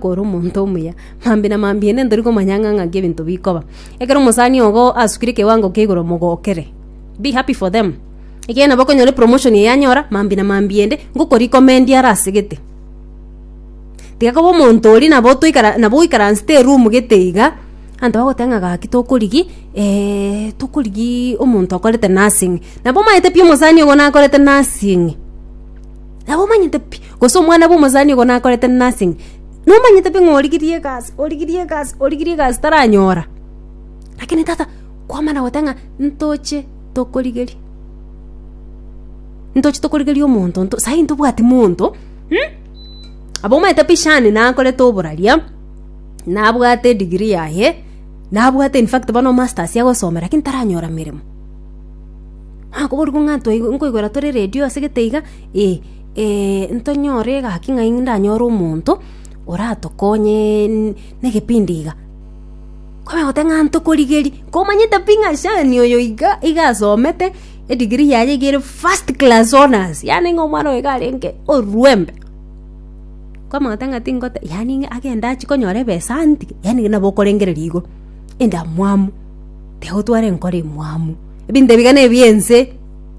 kore omonto omuya. Mambia na mambia inde ntori komanya ng'a ng'aki ebinto bikoba. Ekero omosani ogo asukire ekewango kia igoro mogokere. Be happy for them. Ekiagera nabo okonyora epromotion eye anyora, mambia na mambia inde ngokorecomendi are ase gete. Tiga koba omonto oria nabo toikara nabo oikaransete eroom gete iga, abanto bagoteba ng'a gaki tokorigia eh tokorigia omonto okorete nursing. Nabo omanyete pi omosani ogo nakorete nursing. Nabo omanyete pi. Gose omwana bw'omosani ogo nakorete nursing, nomanyete pi ng'a origirie egasi origirie egasi origirie egasi taranyora lakini tata kwamana goteba ng'a ntoche tokorigeria ntoche tokorigeria omonto nto sahi ntobwati monto mh? Aba omanyete pi shani nakorete oboraria nabwate edegree yaye nabwate in fact bono masters agosoma lakini taranyora emeremo. Nakoboria ng'a ntoigu nkoigwera tore radio asegete iga ee. ntonyore egaki ng'a ndanyore omonto oratokonye n- negepindi iga. Kwabera goteba ng'a ntokorigeria, komanyete pi ng'a shani oyo iga iga asomete, edegree yaye iga ere first class honours, yaani ng'a omwana oyo iga arenge orwembe. Kwamanya goteba ng'a tingote yaani ng'a agende achie konyora ebesa antige, yaani nabo okorengereria igo, endamwamu, tiga gotwara enkoro emwamu, ebinto ebiga na ebi'ense.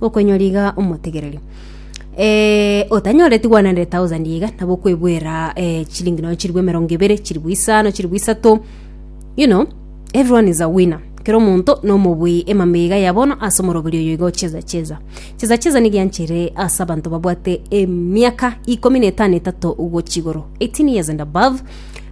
Okonyora iga omotegereri eh, otanyoreti 100,000 iga nabo okwebwera eh, chilingi nonya chiribu emerongo ibere chiribu isano chiribu isato you know everyone is a winner kera omonto nomobui emama iga yabono ase omoroberi oyo iga ocheza cheza cheza cheza nigianchere ase abanto babwate emiaka ikomi na etano etato gochigoro 18 years and above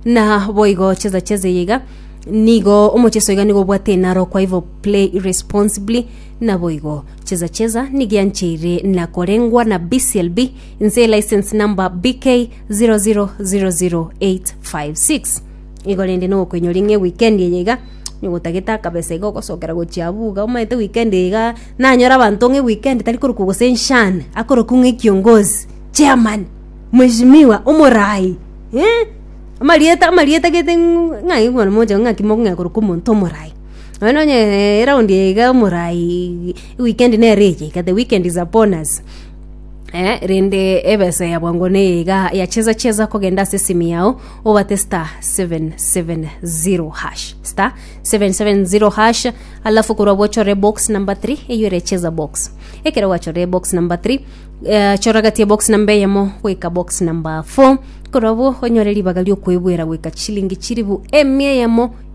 na boigo cheza cheza iga nigo omocheso iga nigo obwate enaro kwa hivyo play responsibly Naboigo, chesa chesa nigiancheire na korengwa na BCLB inse license number BK0000856. Igo rende nogokoinyoria ng'e weekend eye iga nyogotagete akabesa iga ogosokera gochia abwo iga omanyete weekend eye iga nanyore abanto ng'e weekend tari korokwa gose nshan akorokwa ng'e kiongozi, chairman, mweshimiwa, omorai eh, amarieta amarieta gete ng'ai kwanza mogocha ng'a naki mokong'ea korokwa omonto omorai. Nonya nonya eh, eround eye iga omorai weekend nere eye iga the weekend is upon us Eh, rende ebesa ya bwango neye iga yacheza cheza kogenda ase esimi yao obate star 770 hash star 770 hash alafu korwa bochore box number 3 eyo ere cheza box ekero gwachore box number 3 eh, choragatie box number eyemo goika box number 4 korwa bo onyore ribaga riokwebwera goika chilingi chiribu emia eyemo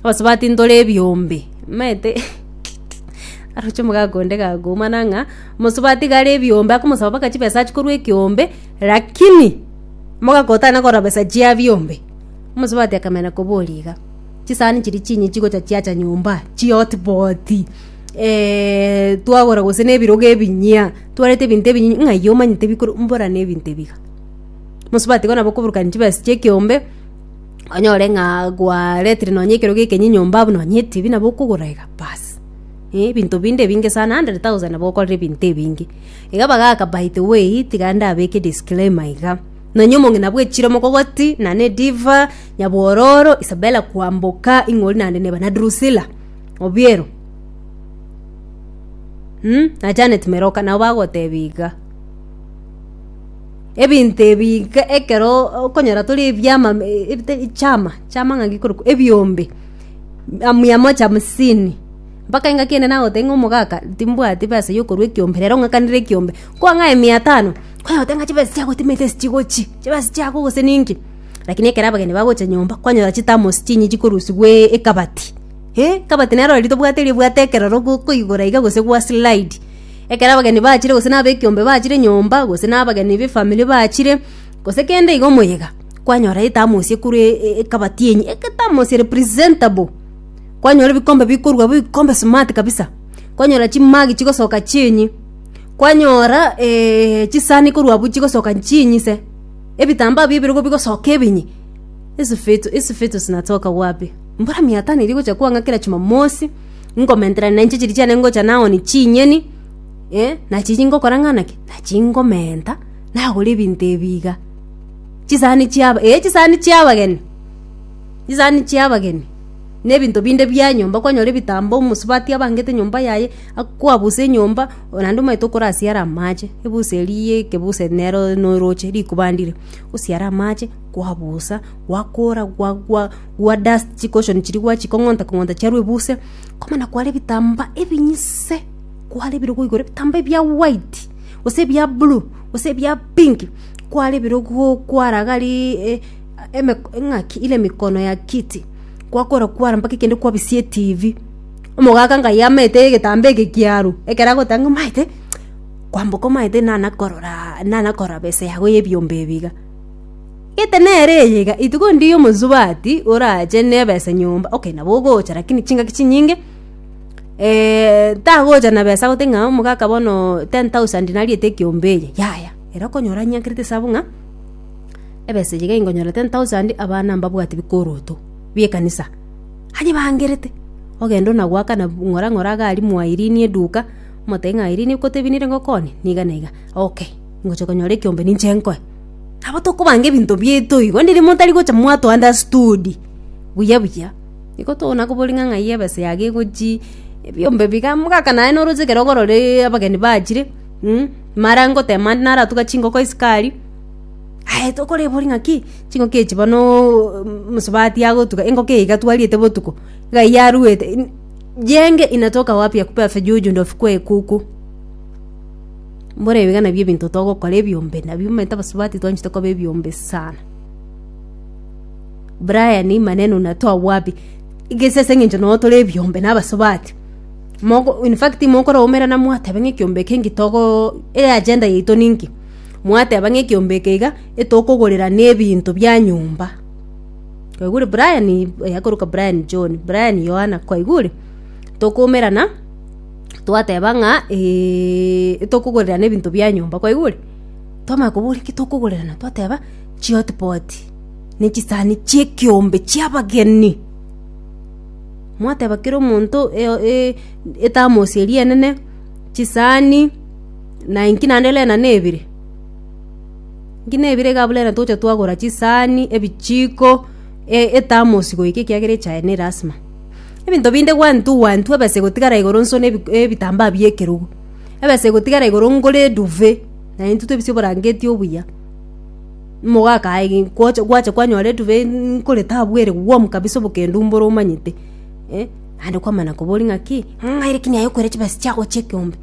abasubati ntore ebiombe maete aroche omogaka onde gakoumana ng'a mosubati iga are ebiombe akomosaba mpaka chibesa achia korwa ekiombe lakini omogaka otana korora besa chia biombe omosubati akamenya koboria iga chisahani chiria chinye chigocha chiacha nyomba chihotpoti twagora gose na ebirogo ebinyia twareta ebinto ebinyinyi ng'ai omanyete bikoru mborane ebinto ebi iga mosubati igo nabo okoburukani chibesa chia ekiombe. onyore ng'a gwaretire nonye ekero gia ekenyinyi nyomba abwo nonye etibi nabo okogora iga basi. Eh ebinto binde ebinge sana hundred thousand nabo okorire ebinto ebinge. Iga bagaka by the way tiga ndabeke disclaimer iga, nonye omong'ina bwa echiro omokogoti, nane diva, nyabwororo, isabella kwamboka, ing'ori naende neba na drusila obiero mmh na janet meroka nabo bagotebia iga. Ebinto ebi nka ekero okonyora tore ebiama ebite chama chama ng'a nge korokwa ebiombe a mia moja hamsini, mpaka engaki ende nagoteba ng'a omogaka timbwati besa ya okorwa ekiombe rero ng'akanire ekiombe. Kwang'ae mia tano, kwanyora ng'a chibesa chiagotimetie ase chigochi, chibesa chiago gose ninki. Lakini ekero abageni bagocha nyomba, kwanyora chitamos chinye chikorusigwa ekabati, eh ekabati nero riria tobwate riria obwate ekerero gokoigora iga gose gwa slide. Ekero abageni bachire gose nabekiombe bachire nyomba gose nabageni befamiri bachire gose kende igo moyega kwanyora etamosie korwa e- e- ekabati enye egetamosie representable kwanyora ebikombe bikorwa abwo ebikombe smart kabisa kwanyora chimagi chigosoka chienyi kwanyora chisani korwa abwo chigosoka chinyi se ebitambaa bia ebirogo bigosoka ebinyi hizi fitu hizi fitu sinatoka wapi mbura miatano eria egocha kwang'akera chumamosi. Nkomentera na inche chiria chiane ngocha nagoni chinyeni, eh, na chiria ngokora ng'a naki, nachia ngomenta, nagora ebinto ebi iga. Chisani chiaba eh chisani chia abageni, chisani chia abageni, na ebinto binde bia nyomba, kwanyora ebitambo, omosubati abangete nyomba yaye, akwabusa enyomba, oh naende omanyete okorasiara amache, ebusa eria ya ekebuse nero na oroche rikubandire, osiara amache, kwabusa, gwakora gwa gwa. gwa dust chikoshoni chiria gwachia kong'onta kong'onta chiarwa ebuse komana kware ebitamba ebinyise kware ebirogo igoro ebitamba ebia white gose ebia blue gose ebia pink kware ebirogo kwara gari e eme ng'aki ile mikono ya kiti gwakora kwara mpaka ekende kwabisia etibi omogaka ngai amaete egetamba eke kiarwa ekero agoteba ng'a omaete kwamboka omaete nana korora nana korora besa yago ya ebiombe ebi iga. Gete nere eye iga ituko ndiri omosubati orache neba ase nyomba okay nabo ogocha lakini chingaki chinyinge eh tagocha na besa gote ng'a omogaka bono ten thousand nariete ekiombe eye yaya ere okonyora anyankerete esabu ng'a ebesa eye iga ingonyora ten thousand abana mbabwati bikoroto bie ekanisa anyebangerete ogenda onagoakana ng'ora ng'ora agari mwairinie eduka omotebia ng'a airini gotebi nere ngokone niga na iga okay ngocha konyora ekiombe ninche nkoe. Nabo tokobanga ebinto biaito igo, ndiri motari gocha mwatounderstood buya buya. Igo tokona koboria ng'a ng'ai ebesa yago egochii, ebiombe biga mogaka naye noroche ekero ogorora eeee abageni bachire mh, mara ngoteba naende naratuga chingoko isiko aria, aye tokorebori ng'aki, chingoko echi bonooo mosubati agotuga engoko eye iga twarierete botuko, iga eywo aruete, in jienge inatoka wapi ya kupewa vijuju ndo vikue kuku. Mbore ebiga nabio ebinto togokora ebiombe nabio omanyete abasubati twanchete koba ebiombe sana. Brian maneno na twabwabie egese ase eng'encho noo tore ebiombe na abasubati mogo in fact mokoraumerana mwateba ng'a ekiombe eke nki togo eagenda yaito ninki mwateba ng'a ekiombe eke iga etokogorerania ebinto bia nyomba kwaigure Brian oyo akoroka Brian John Brian Yohana kwaigure tokoumerana. twateba ng'a tokogorirana ebinto bia nyomba, kwaigure? Twamanya koboria ki tokogorirana, twateba chihotipoti na echisani chia ekeombe chia abageni. Mwateba kera omonto e- e- ethermos eria enene, chisani, na inki naende renda na ebire? Inki na ebire iga abwo renda togocha twagora chisani, ebichiko, e- ethermos goika ekiagera echae ne elasima. Ebinto binde gwantwa gwantwa ebesa egotigara igoro nso na ebi- ebitambaa bi'ekerogo, ebesa egotigara igoro ngore eduve, naye intwe tobisie oborangeti obuya. Nigo akae gi gocha gwacha kwanyora eduve n- nkore tabu ere warm kabisa obokendo mbore omanyete eh, naende kwamana kobori ng'aki ng'a ere ki naye okoira chibesa chiago chia ekeombe.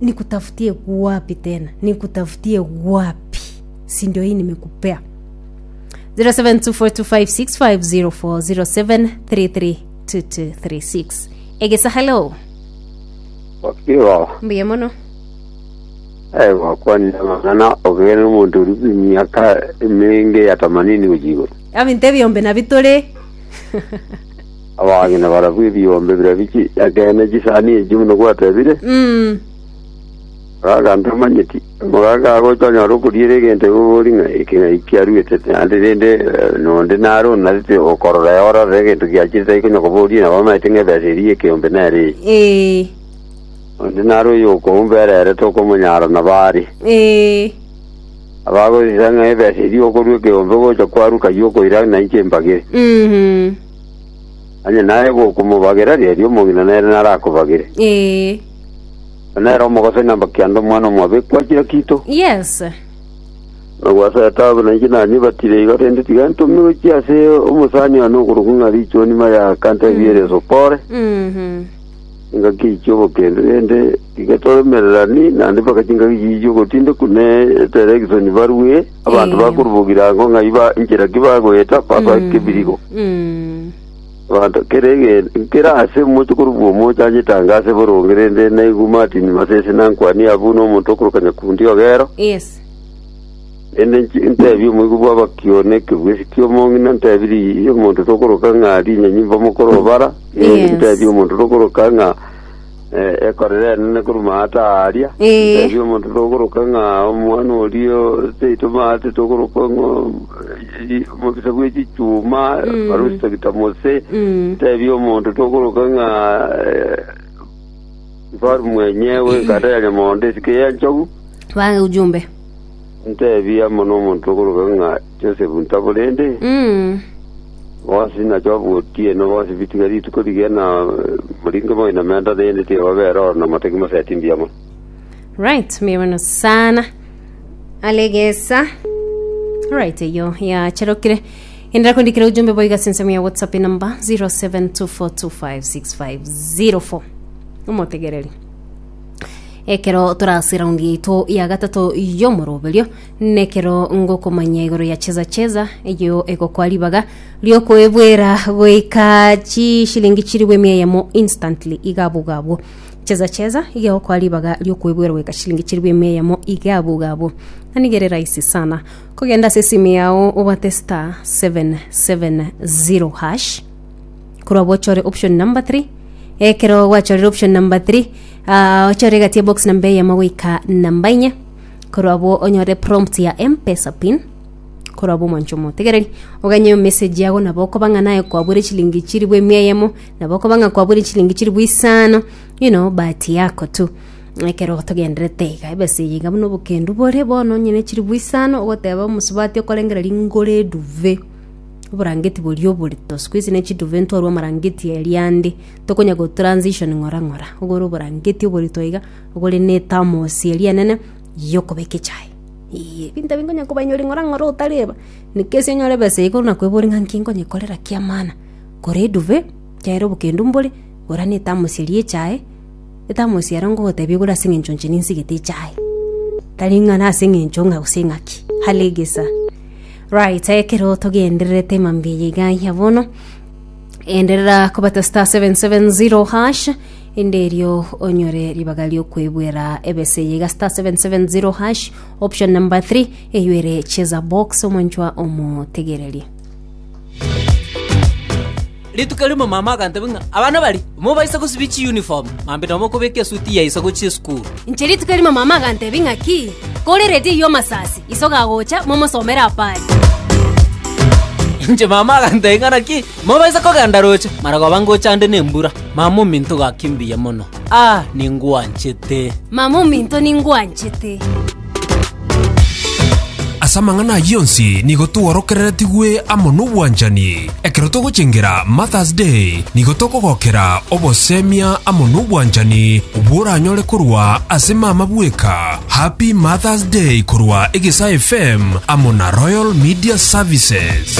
Nikutafutie wapi tena, nikutafutie wapi, si ndio hii nimekupea. 072425650407332236 egesa hello Igo, mbuya mono eh, gwakwanire amang'ana ogere n'omonto ori emiaka emenge ya tamanini gochia igoro. abinto ebiombe nabi tore Abang'ina barabwo ebiombe bira bichi, ekeene chisani echi buna gwatebire, Mm, Agambia, Omanyeti, amagaka ago tonyare okoriera egento igogori ng'a eke ng'ai kiaruete, naende rende nonde nare onarete okorora eora orore egento giachire tari konya koboria nabo omanyete ng'a ebesa eria y'ekeombe nere eye. Ee, Onde nare oyokoumba ere ere tokomonyara nabo are. ee, Abagosesa ng'a ebesa eria okorua ekeombe gocha kwaruka y'okoira na inche mbagere. mhm, Onye naye gokomobagera riria omong'ina nere narakobagere. ee, Na nere omogosani amba kianda omwana omobe kwachire kito. Yes. Na gwasa etabu na inche nanyebatire iga rende tiga ntome gochia ase omosani one okorokwa ng'a richuo nima ya kanta ebiere esopore. Mhm. Engaki ichia obokende rende tiga toremererani naende mpaka chingaki chichia ogotindeku ne eterekisoni barue abanto Eyo. bakorubogira ango ng'a iba inchera ki bagoeta basoake birigo. Mm. Abanto kera egento, kera aase omochie korokwa omochie anyetange ase boronge, rende naigwe Martin Masese nankwanie abu nomonto okoroka nyakundi Ogero, Yes. rende nchi- ntebie omoigwa bw'abakio na ekegwesi ki'omong'ina, ntebie ri- omonto tokoroka ng'a rinyanyimba mokoro obara, Yes. ntebie omonto tokoroka ng'a Eh, ekore renene korwa ata aria Eh. Tebi omonto togoroka ng'a omwana orio seito maate togoroka ng'o mobisa bwe chichuma Mm. barusitagita mose Mm. tebi omonto togoroka ng'a mfaru mwenyewe kata ya nyamondo esike ya nchogu Ba ujumbe. Nteebie amo nomonto okoroka ng'a Josefu ntabo rende, bonsi nache obotieno bonsi bitige rituko rigena moringe moino menta rende tibabera oro na motaki moseti mbuya mono. Right, mbuya mono sana. Alegesa. Right, eyo yacherokire. Endera kundikira ujumbe boiga sinsemo ya WhatsApp number 0724256504. Omotegereri. Ekero tore ase eraundi yaito ya gatato y'omoroberio, nekero ngokomanya igoro ya cheza cheza eyo egokwa ribaga riokoebwera goika chishilingi chirigwe emia eyemo instantly iga abwo iga abwo cheza cheza iga egokwa ribaga riokoebwera goika chishilingi chirigwe emia eyemo iga abwo iga abwo na nigo ere rahisi sana kogenda ase esimi yao obwate star 770 hash korwa bochore option number 3 ekero gwachorire option number 3 ah, ochore egati ya box namba eyemo goika namba inye korwa abwo onyore prompt ya mpesa pin korwa abwo omoncho omotegereri oganye message yago nabo okoba ng'a naye kwabwire chilingi chiribu emia eyemo nabo okoba ng'a kwabwire chilingi chiribu isano you know bahati yako tu ekero togenderete iga ebesa eye iga buna obokendu bore bono onye ne chiribu isano ogoteba omosubati okorengera ringoro eduve Oborangeti boria oborito. Siku hizi ne chiduve ntwarwa amarangeti e riande. Tokonya go transition ng'ora ng'ora. Ogore oborangeti oborito iga, ogore ne ethermos eria enene yokobeka echae. Eeh, ebinto ebio nkonya kobainyori ng'ora ng'ora otareba. In case onyore ebesa eyio ekero nakoebori ng'a nki nkonyekorera kiamana, gora eduve, chiaye ere obokendo mbore, gora ne ethermos eria echae, Etamosiaro ngogotebia igoro ase engencho inche ninsigete echae. Tari ng'a nase engencho ng'a gose ng'aki. Halegesa. Right, ekero togendererete mambia eye iga ya bono, enderera kobata star 770 hash inde erio onyore ribaga riokwebwera ebese eye iga star 770 hash option number 3 eyuere cheza box omwanchwa omotegererie. Rituko rimo mama agantebia ng'a, Abana baria, mobaisa gosibia chiuniform, mambi nomokobeka esuti ya iso gochia esukuru. Inche rituko rimo mama agantebia ng'a, Ki, koreretie iye omasasi, iso gagocha, momosomere apo are. Inche mama agantebia ng'a, Naki, mobaisa kogenda roche, maragoba ngochande nembura. Mama ominto gaki mbuya mono. Aa, ningwanchete! Mama ominto ningwanchete! Ase amang'ana ayio onsi nigo tworokereretigwe amo nobwanchani. Ekero togochengera Mother's Day, nigo tokogokera obosemia amo nobwanchani bworanyore korwa ase mama bweka. Happy Mother's Day korwa Egesaa FM amo na Royal Media Services.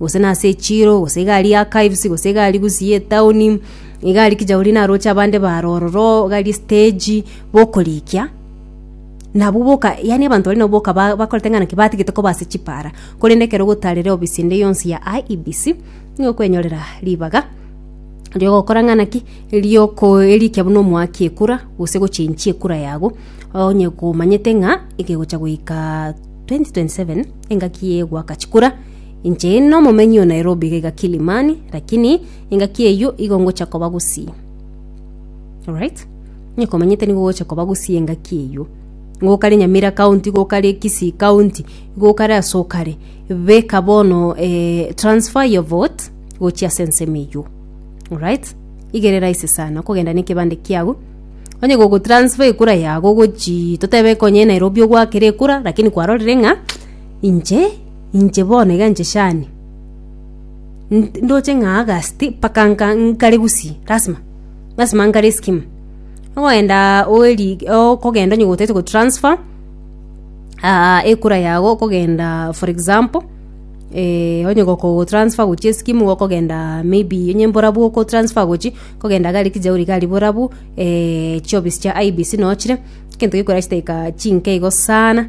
gose nase echiiro, gose egari ya kaives, gose egari gusii ye etaoni, egari kinya oria naroche abande bare ororo, egari estage, bokorikia, nabwo boka yaani abanto baria nabo boka ba- bakorete ng'a naki batigete koba ase chipaara, korende ekero ogotaarera obisi ende yonsi ya IEBC, nigo okwenyorera ribaga riogokora ng'a naki, rioko erikia buna omoaki ekura, gose gochenchia ekura yago, onye komanyete ng'a ekegocha goikaaa 2027 engaki egoaka chikura. Inche nomomenyi o Nairobi iga iga Kilimani, lakini engaki eyio igo ngocha koba gusii. Alright? Inye komenyete nigo gocha koba gusii engaki eyio. Nigo okare Nyamira County, igo okare Kisii County, igo okare ase okare. Beka bono eh, transfer your vote gochia ase ensemo eyio. Alright? Iga ere rahisi sana okogenda na ekebande kiago onye gogotransfer ekura yago gochii totebe konya Nairobi ogwakire ekura lakini kwarorire ng'a inche Inche bono iga nchechani, nd- ndoche ng'a August mpaka nka nkare gusii, lasima, lasima nkare escheme. Ogoenda oeri okogenda onye gotete gotransfer ekura yago okogenda for example, onye goko gotransfer gochia escheme igo okogenda maybe onye mborabu okotransfer gochia, okogenda gari ekejea ore gari borabu chiofisi chia IEBC nochire, ekento gekorera chidakika chinke igo sana.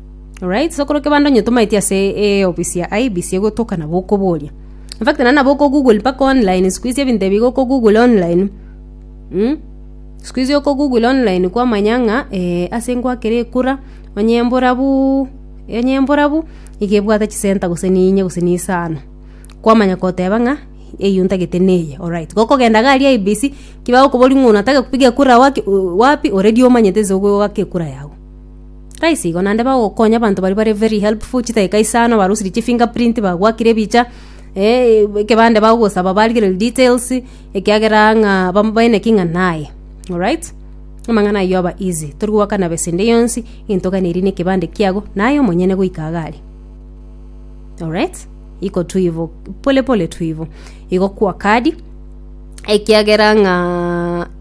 Alright, so korwa kebando onye tomaeti ase eh, ofisi ya IBC egotoka nabo okoboria. In fact nana nabo okogoogle mpaka online siku hizi ebinto ebi iga okogoogle online. Mm? Siku hizi okogoogle online kwamanya ng'a eh, ase ngwakere ekura onye emborabu onye emborabu iga ebwate chisenta gose ninye gose nisano. Kwamanya koteba ng'a eyio ntagete neye. Alright, gokogenda iga aria IBC, kibagokoboria ng'a onataka kupiga kura waki wapi already omanyete nse ogoaka ekura yago. Raisi igo naende bagokonya abanto baria bare very helpful chidakika isano barusirie chifingerprint bagwakire ebicha eh, ekebande bagosaba barigererie details ekiagera ng'a bamobaeneki ng'a naye alright amang'ana ayio aba easy tori goakana besa ende yonsi egento oganeiri na ekebande kiago naye omonyene goika iga are alright iko tu ivo pole pole tu ivo igo kwa kadi ekiagera ng'a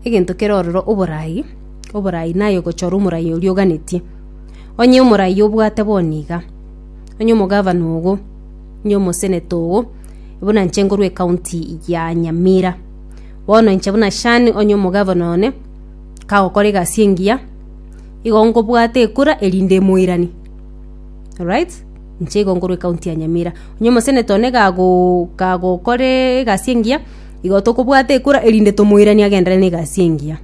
egento kere ororo oborai oborai naye ogochora omorai oria oganetie. Onye omorai obwate bono iga, onye omogavana ogo, onye omoseneto ogo, buna inche nkorwa ecounty ya Nyamira. Bono inche buna Shan onye omogavana one, kagokora egasi engiya, igo nkobwate ekura erinde emoirani. Alright? Inche igo nkorwa ecounty ya Nyamira. Onye omoseneto one kagooo kagokora egasi engiya, igo tokobwata ekura erinde tomoiranie agenderere na egasi engiya.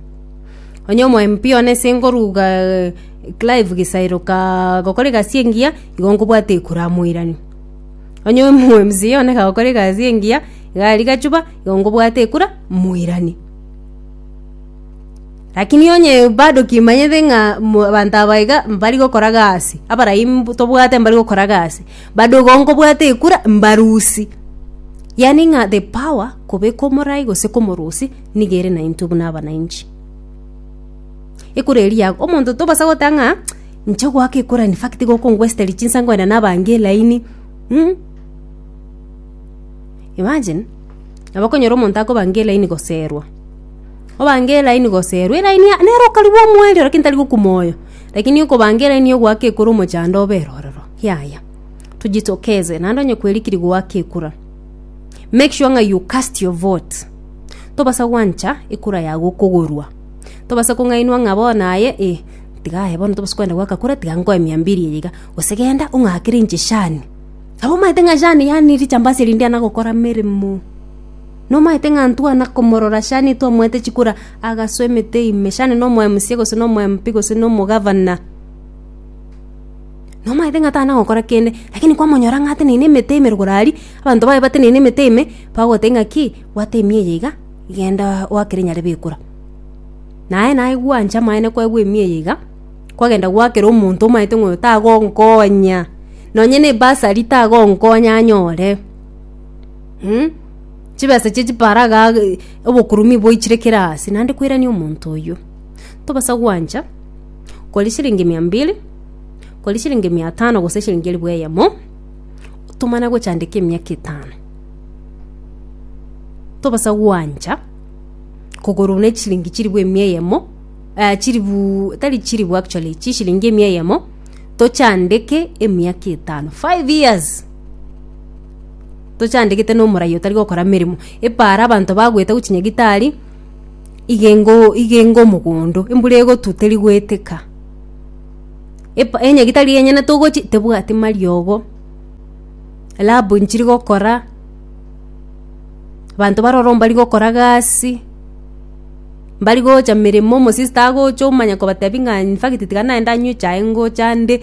Onye omoemp one ase ngoruga eh, Clive Gisairo ka gokora egasi engiya, igo nkobwata ekura amoiranie. Onye omo mca one ka gokora egasi engiya, iga aria gachuba, igo nkobwata ekura moiranie. Rakini onye bado kimanyete ng'a mo abanto aba iga mbari gokora gasi, abarai mbu tobwate mbari gokora gasi, bado igo nkobwata ekura mbarusie. Yaani ng'a the power kobeka omorai gose komorusia. nigo ere naintwe buna abana inche. Ekura eria yago, omonto tobasa goteba ng'a inche goaka ekura in fact iga okongwestereri chinsa nkoenda nabange elaini mm. Imagine, nabo okonyora omonto akobanga elaini goserwa, obanga elaini goserwa, elaini ya- nere okarigwa omoerio ere lakini tari gokwa moyo. Lakini okobanga elaini ya ogoaka ekura omochando obe ororo, yaya, tojitokeze naende onye kwerikiri goaka ekura. make sure ng'a you cast your vote tobasa gwancha ekura yago okogorwa tobasa kong'ainwa ng'a bono aye eh tiga aye bono tobasa kogenda goaka kura tiga nkoe mia mbiri eye iga gose genda ong'akere inche shani nabo omanyete ng'a shani yaani richambasi eri ndiana gokora meremo nomanyete ng'a ntwana komorora shani twamoete chikura agasoa emete ime shani nomo mca gose nomo MP gose nomo governor. Nomaete ng'a tana gokora kende, lakini kwamonyora ng'a ateneine emete ime rogoro aria, abanto baye bateneine emete ime, bagoteba ng'a ki, bwata emiya eye iga, genda oakere nyarebe ekura. Naye naye gwancha amaene kwaigwa emiya eye iga, kwagenda gwaakera omonto omaete ng'a oyo tagonkonya, nonye ne ebasari tagonkonya anyore mm chibesa chie chipara igaa obokurumi boichire kera aase, naende koirania omonto oyio. Tobasa gwancha. kori chiringi mia mbiri kori chiringi mia tano gose chiringi elifu eyemo tomana gochandeka emiaka etano tobasa gwancha kogorwa ne chiringi chilifu emia eyemo eh, chilifu tari chilifu actually chishiringi emia eyemo tochandeke emiaka etano five years tochandegete nomorai otari gokora emeremo epara abanto bagoeta gochi nyagitari igengo igengo omogondo, embura egotwa teri goeteka, epa enyagitari enyene togochi tebwati mariogo, rabu nchiri gokora, abanto bare ororo mbari gokora gasi, mbari gocha meremo, omosista agocha omanya kobatebi ng'a infact tiga naye ndanywe echae ngocha nde,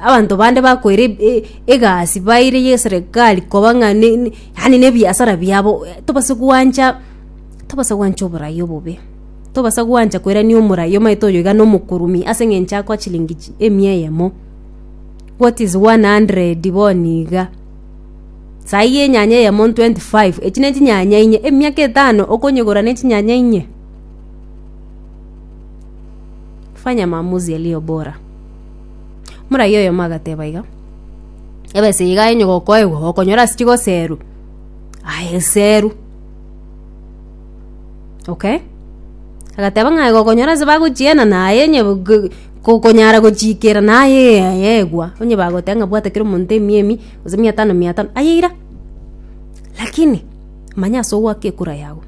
abanto bande bakoira eb- e- egasi baire ya eserekari koba ng'a ne- ne yaani na ebiasara biabo, tobasa goancha. Tobasa gwancha oborai obobe. Tobasa gwancha koirania omorai omaete oyo iga nomokurumi ase eng'encho akoa chilingi chi- emia eyemo. What is 100 boni iga? Saii enyanya eyemo 25 echi ne chinyanya inye, emiaka etano okonyegora ne chinyanya inye? Fanya maamuzi yaliyo bora. Morai oyomo agateba iga, ebesa eye iga enye gokoegwa, gokonyora ase chigoseru, aye seru. okay agateba ng'a aye gokonyora ase bagochiena naye onye bu- ge- ko- konyara gochiikera naye yegwa onye bagoteba ng'a bwata kera omonto emiya emi gose mia tano mia tano aye ira lakini manya ase ogwaka ekura yago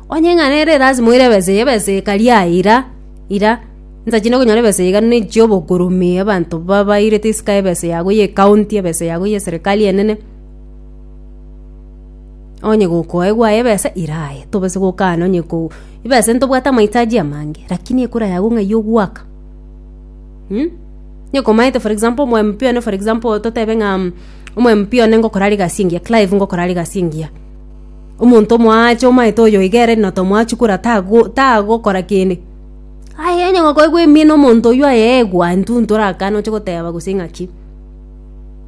onye ng'a nere lazima oire ebesa eye ebesa eye kari aye ira ira nsa chinde konyora ebesa eye iga ne chia obokoromi abanto ba- bairete isiko ya ebesa yago ya ekaunti ebesa yago ya eserekari enene. onye gokoegwa aye ebesa iraye tobase gokana onye ko ebesa ntobwate amahitaji amange lakini ekura yago ng'a eywo ogwaka mm? nyekomanyete for example omo MP one for example totebe ng'a mm, omo MP one ngokora are egasi engiya Clive ngokora are egasi engiya omonto omoache omanyete oyo iga ere na tomoa chikura tago tagokora kende aye onye gokoegwa emino omonto oywo aye egwa intwe ntorakane oche goteba gose ng'aki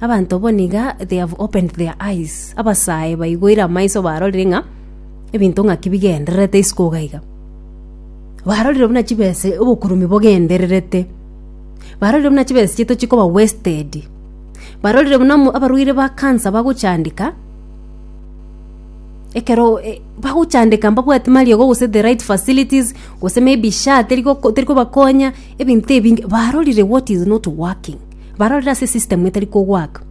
Abanto bo niga they have opened their eyes. Abasae baigoire amaiso barorire ng'a ebinto ng'aki bigendererete isiko iga iga. Barorire buna chibese obokurubi bogendererete. Barorire buna chibese chiaito chikoba wasted. Barorire buna mo- abarwaire ba cancer bagochandeka ekero e- bagochandeka mbabwati mariogo gose the right facilities gose maybe SHA teri goko- teri kobakonya ebinto ebinge barorire what is not working. barorire ase system etari kogwaka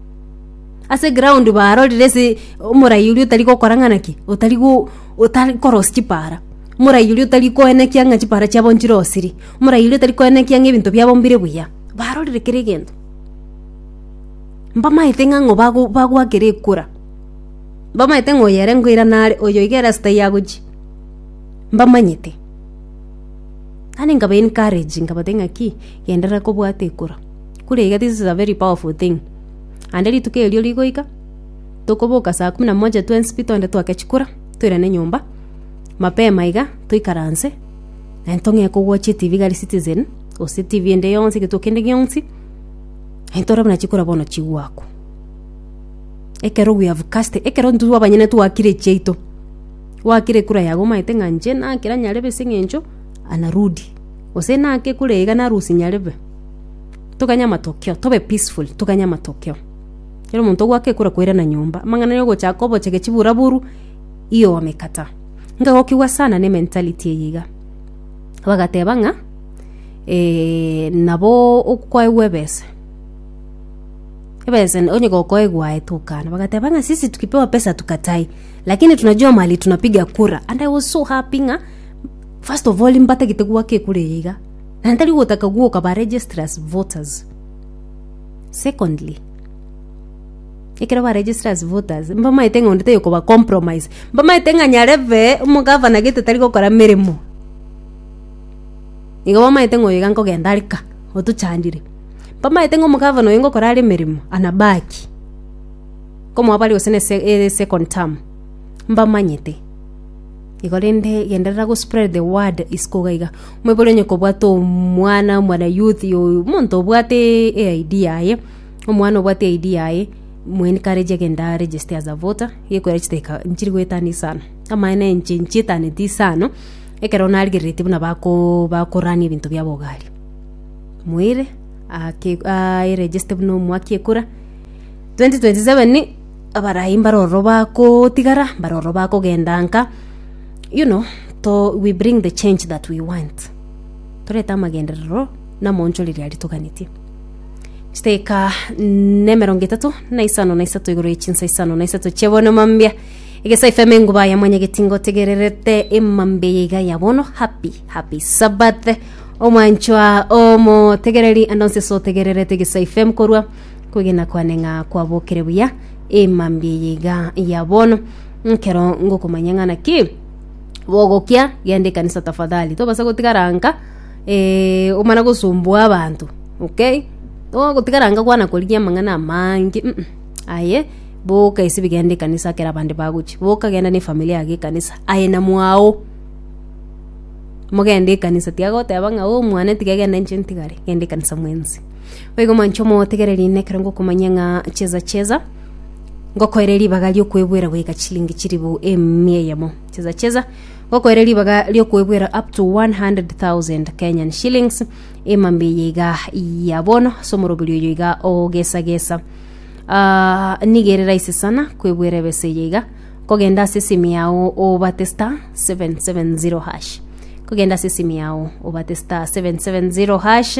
ase ground barorire ase omorai oria otari gokora ng'ana ki otari go otari korosi chipara omorai oria otari koenekia ng'a chipara chiabo nchirosirie omorai oria otari koenekia ng'a ebinto biabo mbire buya barorire kera egento mbamaete ng'a ng'o bago bagwakere ekura mbamaete ng'a oyo ere nkoira nare oyo iga ere asete aiga agochia mbamanyete naende nkaba encourage nkabatebi ng'aki. genderera kobwata ekura. Kura iga this is a very powerful thing. Naende rituko erio rigoika, tokoboka saa kumi na moja twensi pi twende twake chikura, toirane nyomba, mapema iga, toikaranse, naende tong'ee kowochia etibi igare citizen, gose etibi ende yonsi, egento kende gionsi, naende tore buna chikura bono chigoakwa. Ekero we have cast, ekero intwe abanyene twakire echiaito, gwakire ekura yago omaete ng'a inche nakera nyarebe ase eng'encho, anarudi. Gose naki kure iga narusi nyarebe. Toganye amatokeo, tobe peaceful, toganye amatokeo. Kero omonto ogwake ekura koirana nyomba, amang'ana aria ogochaka obochege chiburaboru, iyo wamekata. Nkagokigwa sana ne mentality eye iga. Bagateba ng'a eh, nabo okoegwa ebese. Ebese onye gokoegwa aye tokana. Bagateba ng'a sisi tukipewa pesa tukatai, lakini tunajua mahali tunapiga kura. And I was so happy ng'a First of all mbatagete gwaka ekura eye iga, na ntari gotaka gwoka ba register as voters. Secondly, ekero ba register as voters mbamaete ng'a onde tayokoba compromise, mbamaete ng'a nyarebe omogavana gete tari gokora meremo, igo bamaete ng'a oyo iga nkogenda are ka otochandire, mbamaete ng'a omogavana oyo ngokora are emeremo anabaki komoa bare gose ne se second term mbamanyete. Igo rende genderera go spread the word isiko iga iga. Mwebori onye kobwate omwana omwana youth oyo omonto obwate e ID yaye omwana obwate e ID yaye mu encourage agende a register as a voter gekorera chidakika nchire goetania isano. Amaene inche nchietaneti isano ekero narigereretie buna bako bakorania ebinto bia bogari. Moire ake a eregiste buna omwaka ekura 2027 Abarai mbare ororo bakotigara, mbare ororo bakogenda nka, you know, to, we bring the change that we want. Torete amagenderero na omonchoreria aria toganetie. Chiteka na emerongo etato na isano na isato igoro ye chinsa isano na isato chia bono mambia. Egesa FM enguba ya mwanyageti ngotegererete emambia ya iga ya bono. Happy, happy Sabbath. Omwanchwa omotegereri ande onse sotegererete Egesa FM korwa Kwegena kwane ng'a kwabokire buya ee mambia eye iga ya bono nkero ngokomanya ng'a naki bogokia genda ekanisa tafadhali tobasa gotigara nka eh, omana gosumbua abanto okay togotigara nka kwana korigia amang'ana amange mm -mm. aye boka ase bigenda ekanisa ekero abande bagochi boka genda na efamiri yago ekanisa aye na mwago mogende ekanisa tiagoteba ng'a omwana tiga egenda inche ntigare genda ekanisa mwensi Boigo mwanche omotegereri nekero ngokomanya ng'a cheza cheza ngokoere ribaga riokwebwera goika chilingi chiribu emia eyemo cheza cheza ngokoere ribaga riokwebwera up to 100,000 Kenyan shillings emambe eye iga ya bono ase omoroberi oyo iga ogesagesa Ah, nigere raisi sana kwebwera ebesa eye iga kogenda ase esimu yao obate star 770 hash kogenda ase esimu yao obate star 770 hash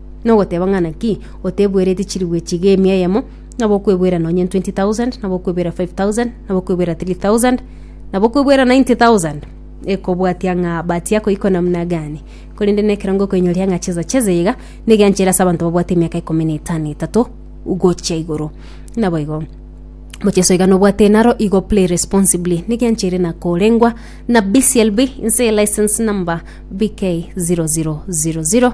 Nogoteba ng'a naki otebwereti chirigwa echi iga emia eyemo, nabo okwebwera nonye 20,000, nabo okwebwera 5,000, nabo okwebwera 3,000, nabo okwebwera 90,000, ekobwatia ng'a batiga koikwa namuna gani. Korende nekerongo okoinyoria ng'a chesa cheze iga nigo enchera ase abanto babwate emiaka ikomi na etano etato gochia igoro. Naboigo mocheso iga nobwate naro igo play responsibly nigo enchera ere na korengwa na BCLB inse eye license number BK0000.